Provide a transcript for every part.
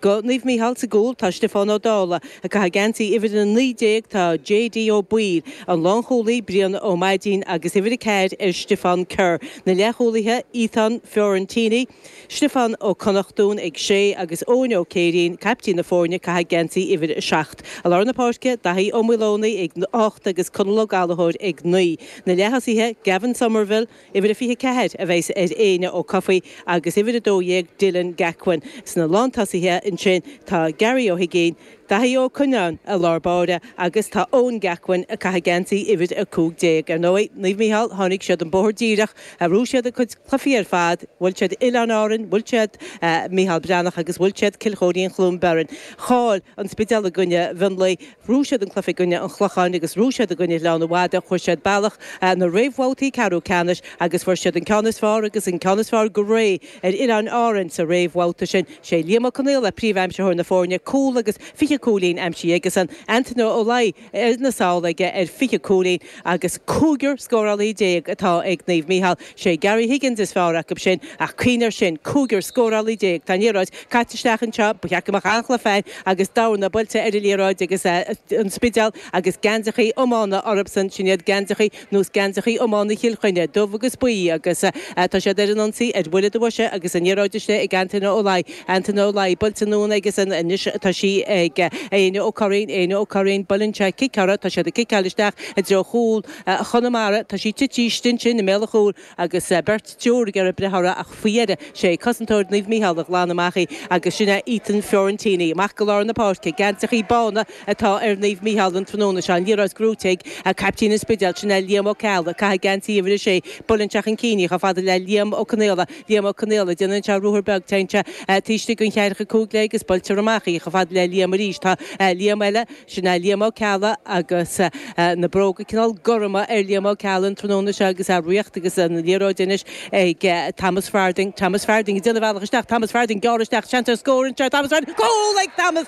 Do Naomh Mícheál sa gcúl tá Stiofán Ó Dála, ag caitheamh geansaí uimhir a 19 tá JD Ó Baoill, an lánchúlaí, Brian Ó Maidín agus uimhir a ceathair ar Stiofán Kerr, na leathchúlaithe, Ethan Fiorentini, Stiofán Ó Connachtáin ag sé agus Eoin Ó Céirín, caiptín na foirne, ag caitheamh geansaí uimhir a seacht. I lár na páirce, Daithí Ó Maoldomhnaigh ag ocht agus Conal Ó Gallachóir ag naoi. Na leath-thosaithe, Gavin Somerville, Uimhir a 24 a bheas ar Éinne Ó Cofaigh agus uimhir a 12 Dylan Gacquin. Sna lántosaithe ansin tá Gary Ó hUiginn, Daithí Ó Coinneáin i lár báire agus tá Eoin Gacquin ag caitheamh geansaí uimhir a 15. Ar ndóigh, Naomh Micheál, tháinig siad an bóthar díreach, ghnóthaigh siad a gcuid cluifí ar fad, bhuail siad Oileáin Árann, bhuail siad Micheál Breathnach agus bhuail siad Cill Choirín-Cluain Bheirn. Chaill an Spidéal i gcoinne Mhionlaigh. Ghnóthaigh siad an cluife i gcoinne an Chlocháin agus ghnóthaigh siad i gcoinne Ghleann na Madadh, chuaigh siad bealach na réamhbhabhtaí ceathrú ceannais agus fuair siad an ceann is fearr agus an ceann is fearr go réidh ar Oileáin Árann sa réamhbhabhta sin. Is é Liam Ó Conghaile príomhaimsitheoir na foirne, cúl agus fiche cúilín aimsithe aige-san, Antaine Ó Laoi sna sála aige ar fiche cúilín, agus cúigear scórálaí déag atá ag Naomh Micheál. 'Sé Gary Higgins is fearr acu sin, ach cuimhnigh air sin, cúigear scórálaí déag! Tá an liathróid caite isteach anseo, ba cheart go mbeadh an-chluife ann agus dorna buailte ar an liathróid agus an Spidéal agus geansachaí iomána orthubsan, sin iad geansachaí nós geansachaí iomána Chill Chainnigh, dubh agus buí, agus tá siad ar an ionsaí ar bhuille do bhoise agus an liathróid istigh ag Antaine Ó Laoi. Antaine Ó Laoi buailte anonn aigesean, anois tá sí ag Éinne Ó Curraoin, Éinne Ó Curraoin, buaileann sé cic uirthi, tá siad ag ciceáil isteach i dtreo chúl Chonamara, tá sí tití istigh ansin i mbéal an chúil agus beirt triúr ag iarraidh breith uirthi ach faoi dheireadh 'sé cosantóir Naomh Micheál a ghlan amach í agus sin é Ethan Fiorentini amach go lár na páirce, geansachaí bána. atá ar Naomh Mícheál an tráthnóna seo, liathróid gnóthaithe ag caiptín an Spidéil, sin é Liam Ó Ceallaigh, ag caitheamh geansaí uimhir a sé, Buaileann sé chun cinn í, chomh fada le Liam Ó Conghaile, Liam Ó Conghaile, Déanann sé ruathar beag, téann sé taobh istigh den cheathracha cúig léi agus buailtear amach í, chomh fada le Liam arís, tá Liam eile, sin é Liam Ó Ceallaigh agus na bróga cineál gorma ar Liam Ó Ceallaigh an tráthnóna seo agus é ag riocht agus an liathróid anois ag Thomas Farthing, Thomas Farthing ag déanamh a bhealach isteach, Thomas Farthing ag gearradh isteach, seans ar scór anseo, Thomas Farthing, cúl ag Thomas!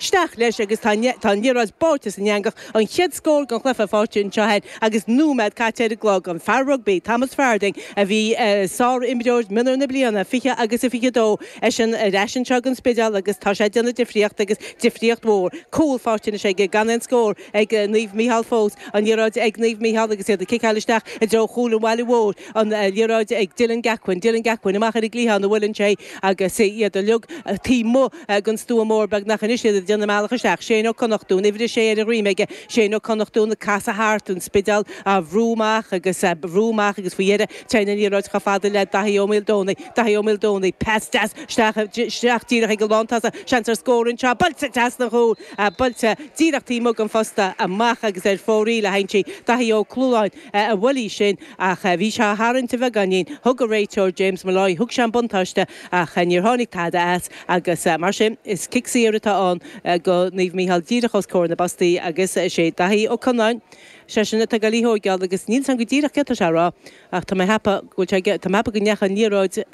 Isteach leis agus tá an liathróid báite san eangach, an chéad scór den chluiche faighte anseo cheana agus nóiméad caite ar an gclog. An fear rugbaí, Thomas Farthing, a bhí sárimreoir mionúr na bliana 20 agus a 22, eisean ar ais anseo don Spidéal agus tá sé ag déanamh difríocht agus difríocht mhór. Cúl faighte anois aige, gan aon scór ag Naomh Micheál fós. An liathróid ag Naomh Micheál agus iad ag ciceáil isteach i dtreo chúl an bhaile mhóir. An liathróid ag Dylan Gacquin. Dylan Gacquin amach ar an gcliathán a bhuaileann sé agus iad uilig taobh amuigh. ag an stua mór beagnach anois iad ag déanamh a mbealach isteach, Séan Ó Connachtún, uimhir 6 ar a dhroim aige, Séan Ó Connachtún ag casadh thart, an Spidéal á bhrú amach agus á bhrú amach agus faoi dheireadh téann an liathróid chomh fada le Daithí Ó Maoldomhnaigh, Daithí Ó Maoldomhnaigh, pas deas isteach díreach ag an lántosaí, seans ar scór anseo, buailte trasna an chúil, buailte díreach taobh amuigh den phosta amach agus ar fóraoil a théann sí, Daithí Ó Clúláin a bhuail í sin ach bhí sé á tharraingt a bheagáinín, thug an réiteoir, James Molloy, thug sé an buntáiste. Ach níor tháinig tada as agus mar sin is cic saor atá ann go Naomh Micheál díreach os comhair na bpostaí agus is é Daithí Ó Conáin, seisean atá ag goil í a thóigeáil agus níl a fhios a'm go díreach céard tá sé a rá ach tá mé cheapadh go bhfuil sé aige, tá mé cheapadh go ndeacha an liathróid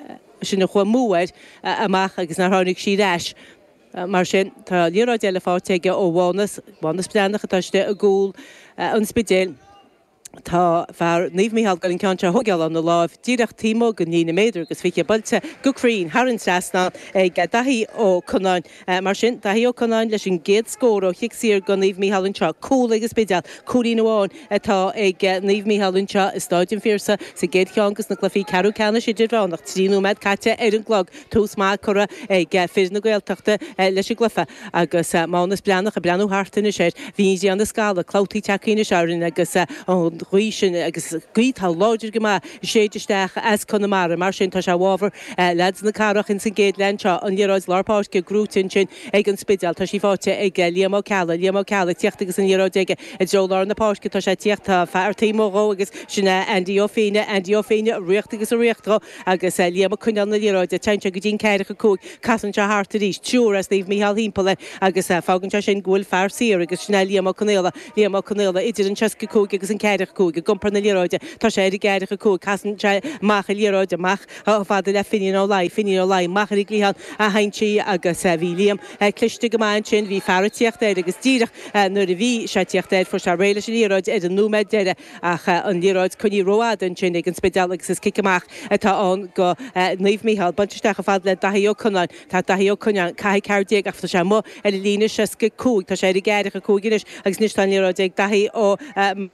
sin a chuaigh amú air amach agus nár tháinig sí ar ais. Mar sin tá liathróid eile faighte aige ó Mhánas, Mánas Breathnach atá istigh i gcúl an Spidéil. Tá fear Naomh Micheál ag goil an ceann seo a thógáil óna lámha díreach taobh amuigh den líne méadar agus fiche buailte go cruinn thar an trasnán ag Daithí Ó Conáin. Mar sin, Daithí Ó Conáin leis an gcéad scór ó chic saor go Naomh Micheál anseo. Cúl ag an Spidéal, cúilín amháin atá ag Naomh Micheál anseo i Stáid an Phiarsaigh sa gcéad cheann de na cluichí ceathrú ceannais idirmheánach trí nóiméad caite ar an gclog. tús maith curtha ag fir na Gaeltachta leis an gcluiche agus Mánas Breathnach ag breathnú thart anois air. Bhí an ghrian ag scaladh, clabhtaí tagthaí anois orainn agus an ghaoth sin, agus gaoth atá láidir go maith, ag séideadh isteach as Conamara. Mar sin, tá sé i bhfabhar leaids na cathrach ins an gcéad leath anseo. An liathróid lár páirce gnóite ansin ag an Spidéal. Tá sí faighte ag Liam Ó Ceallaigh. Liam Ó Ceallaigh ag tíocht agus an liathróid aige i dtreo lár na páirce. Tá sé ag tíocht, fear taobh amuigh dhó agus sin é Andy Ó Féinneadh. Andy Ó Féinneadh ag ritheacht agus ag ritheacht dhó. agus Liam ag coinneáil na liathróide. Téann sé go dtí an ceathracha cúig, casann sé thart arís, triúr as Naomh Micheál thimpeall air, agus fágann sé sin go bhfuil fear saor, agus sin é Liam Ó Conaola, Liam Ó Conaola, idir an seasca cúig agus an ceathracha cúig, ag iompar na liathróide. Tá sé ar an gceathracha cúig, casann sé amach an liathróid, amach chomh fada le Finín Ó Laoi, Finín Ó Laoi, amach ar an gcliathán a théann sí, agus bhí Liam cliste go maith ansin, bhí fear ag tíocht air, agus díreach nuair a bhí sé ag tíocht air, fuair sé réidh leis an liathróid ar an nóiméad deiridh, ach an liathróid coinnithe rófhada ansin ag An Spidéal agus is cic amach atá ann go Naomh Micheál. Buailte isteach chomh fada le Daithí Ó Conáin. Tá Daithí Ó Conáin ag caitheamh ceathair déag ach tá sé amuigh ar an líne seasca cúig, tá sé ar an gceathracha cúig anois agus anois tá an liathróid ag Daithí Ó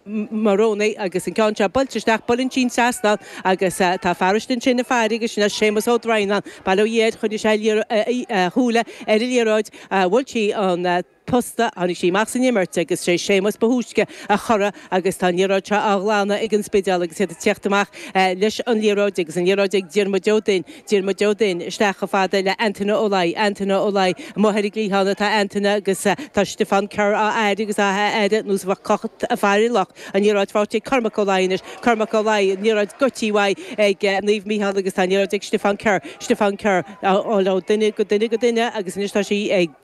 Maoldomhnaigh agus an ceann seo buailte isteach, buaileann sí an trasnán agus tá fear istigh ansin ag faire agus sin é Séamus Ó Droighneáin, bail ó Dhia air, choinnigh sé a shúile ar an liathróid, bhuail sí an. posta. Tháinig sí amach san imirt agus sé Séamus ba thúisce a chorraigh agus tá an liathróid seo á ghlanadh ag an Spidéal agus iad ag tíocht amach leis an liathróid agus an liathróid ag Diarmuid Ó Duinn, Diarmuid Ó Duinn isteach chomh fada le Antaine Ó Laoi, Antaine Ó Laoi, amuigh ar an gcliathán atá Antaine agus tá Stiofán Kerr á fhaire agus á fhaire ar nós a bheadh cat ag faire luch, an liathróid faighte ag Cormac Ó Laoi anois, Cormac Ó Laoi, an liathróid goidte uaidh ag Naomh Micheál agus tá an liathróid ag Stiofán Kerr, Stiofán Kerr, ó duine go duine go duine agus anois tá sí ag.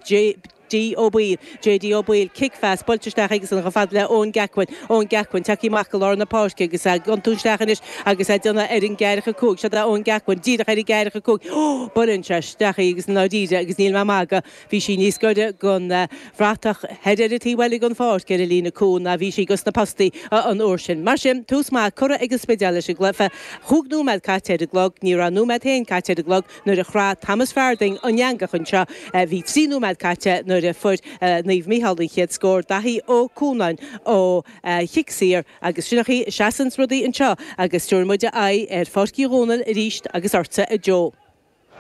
J.D. Ó Baoill, J.D. Ó Baoill, cic phas, buailte isteach aigesan chomh fada le Eoin Geacuin, Eoin Geacuin, tagthaí amach go lár na páirce agus a' iontú isteach anois agus a' déanamh ar an gceathracha cúig, siod é Eoin Geacuin, díreach ar an gceathracha cúig, ó, buaileann sé isteach í agus i ndáiríre agus níl mé a' magadh, bhí sí níos gaire gon bhratach thoir ar an taobh eile gon pháirc ar an líne cúil ná bhí sí gosna postaí an uair sin. Mar sin, tús maith curtha ag an Spidéal leis an gcluiche. Chúig nóiméad caite ar an gclog, ní raibh nóiméad féin caite ar an gclog, Nuair a chroith Thomas Farthing an eangach anseo bhí trí nóiméad caite nuair a fuair Naomh Micheál an chéad scór, Daithí Ó Cónáin ó chic saor agus sin é an chaoi a seasann rudaí anseo agus tabharfaidh muid aghaidh ar Pháirc Uí Dhónaill arís agus ortsa a Joe.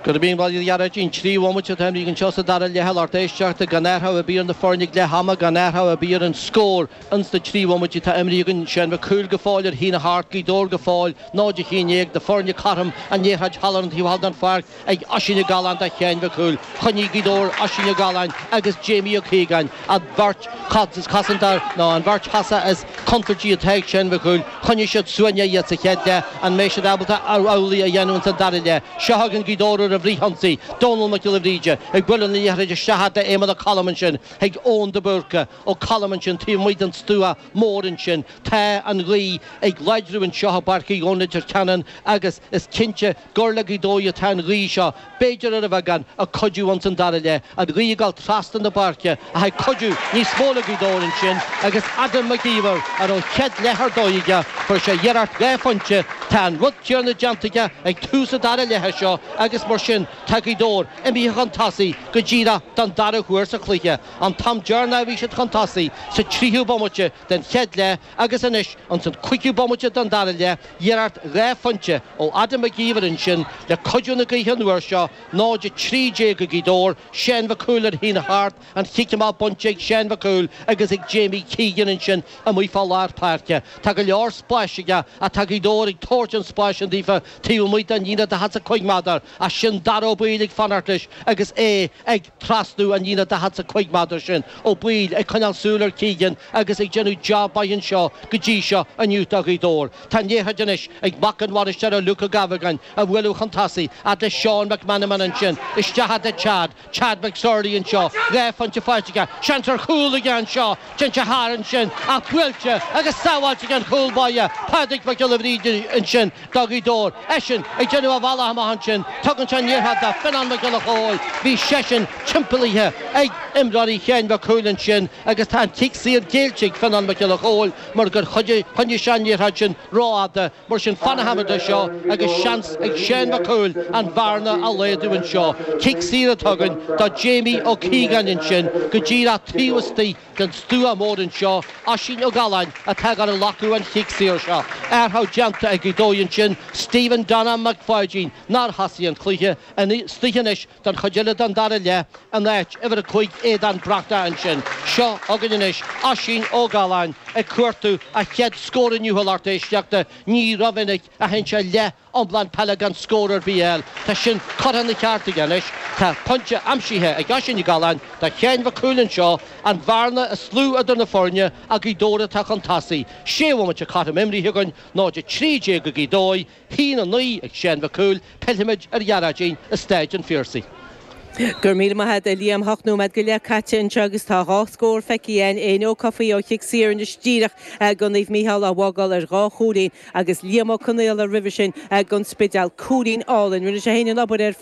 Gura míle, a Ghearóidín, trí bhomaite atá imrithe anseo sa dara leath. A lucht éisteachta, gan athrú ar bith ar na foirne ag leath ama, gan athrú ar bith ar an scór. Ins na trí bhomaite atá imrithe againn, Seán Mhic Cumhaill go fóill ar a haon a hocht, Gaoth Dobhair go fóill, náid a haon déag, na foirne cothrom an liathróid thall ar an taobh thall den pháirc ag Oisín Ó Galláin do Sheáin Mhic Cumhaill. Choinnigh Gaoth Dobhair Oisín Ó Galláin agus Jamie Ó Caogáin, an bheirt cosantóir, nó an bheirt thosach is contúirtí atá ag Seán Mhic Cumhaill, choinnigh siad suaimhneach iad sa chéad leath. An mbeidh siad ábalta amhlaidh a dhéanamh ins an dara leath? Seo chugainn Gaoth Dobhair ar an bhfrithionsaí, Dónall Mac Giolla Bhríde ag bualadh na liathróide isteach thart d'Éamonn Ó Colm, ansin chuig Eoin de Búrca, Ó Colm ansin taobh amuigh den stua mór ansin. Tá an ghaoth ag láidriú anseo, i bPáirc Uí Dhónaill, Leitir Ceanainn, agus is cinnte gur le Gaoth Dobhair atá an ghaoth seo, b'fhéidir ar a bheagán, ag cuidiú ins an dara leith, an ghaoth ag dul trasna na páirce ach ag cuidiú níos mó le Gaoth Dobhair ansin agus Adam Mac Íomhair a raibh chéad leath ar dóigh aige, fuair sé iarracht dhá phointe, tá an rud céarna déanta aige ag tús an dara leithe seo agus mar sin tá Gaoth Dobhair imithe chun tosaigh go díreach don dara huair sa chluiche. An t-am deireanach a bhí siad chun tosaigh, sa tríú bomaite den chéad leath agus anois insan cúigiú bomaite den dara leath, iarracht dhá phointe ó Adam Mac Íomhair ansin le cuidiú na gaoithe an uair seo, 0 13 ag Gaoth Dobhair, Seán Mhic Cumhaill ar a haon a hocht, an chic amach bainte ag Seán Mhic Cumhaill agus ag Jamie Keegan ansin amuigh fá lár páirce. Tá go leor spáis aige ach tá Gaoth Dobhair ag tabhairt an spáis sin daofa taobh amuigh den líne daichead 's a cúig méadar ach sin Darragh Ó Baoill ag fanacht leis agus é ag Trasnú an líne 45 méadar sin, Ó Baoill, ag coinneáil súil ar Keegan agus ag déanamh jab mhaith anseo go dtí seo inniu do Ghaoth Dobhair. Tá an liathróid anois ag mac an bhainisteora Luke Ó Gabhagáin á bhualadh chun tosaigh fhad le Seán McMenamin ansin isteach fhad le Chad, Chad McSorley anseo, dhá phointe faighte aige, seans ar chúl aige anseo, téann sé thar ansin ach buailte agus sábháilte ag an chúl báire Pádraig Mac Giolla Bhríde ansin. Do Ghaoth Dobhair eisean ag déanamh a bhealaigh amach ansin. Tugann sé an liathróid do Fionán Mac Giolla Chomhaill. Bhí seisean timpeallaithe ag imreoirí Sheáin Mhic Cumhaill ansin agus tá an cic saor géillte ag Fionán Mac Giolla Chomhaill mar gur choinnigh sé an liathróid sin rófhada. Mar sin fanfaidh muid dó seo agus seans ag Seán Mac Cumhaill an bhearna a laghdú anseo. Cic saor a tugadh do Jamie Ó Cíogáin ansin go díreach taobh istigh den stua mór anseo, Oisín Ó Galláin atá ag gabháil a ghlacadh an chic saor seo, athrú déanta ag Gaoth Dobhair ansin, Stephen Donna Mac Pháidín nár thosaigh an cluiche, istigh anois don chuid eile den dara leath in áit uimhir a cúig Aodhán Breathnach ansin, seo againn anois Oisín Ó Galláin ag cuartú a chéad scór inniu a lucht éisteachta, ní ró-mhinic a théann sé leath iomlán peile gan scór ar bith a fháil. Tá sin curtha ina cheart aige anois. Tá pointe aimsithe ag Oisín Ó Galláin do Sheáin Mhic Cumhaill anseo, an bhearna is lú idir na foirne ach Gaoth Dobhair atá chun tosaigh. Sé bhomaite cothrom imrithe againn, 0 13 ag Gaoth Dobhair, 1 9 ag Seán Mhic Cumhaill, pillfimid ar Ghearóidín i Stáid an Phiarsaigh. Go raibh míle maith agat, a Liam. Ocht nóiméad go leith caite anseo agus tá dhá scór feicthe againn, Éanna Ó Cofaigh ó chic saor anois díreach do Naomh Mícheál á bhfágáil ar dhá chúilín, agus Liam Ó Conaola roimhe sin, don Spidéal. Cúilín álainn. Rinne sé fhéin an obair ar.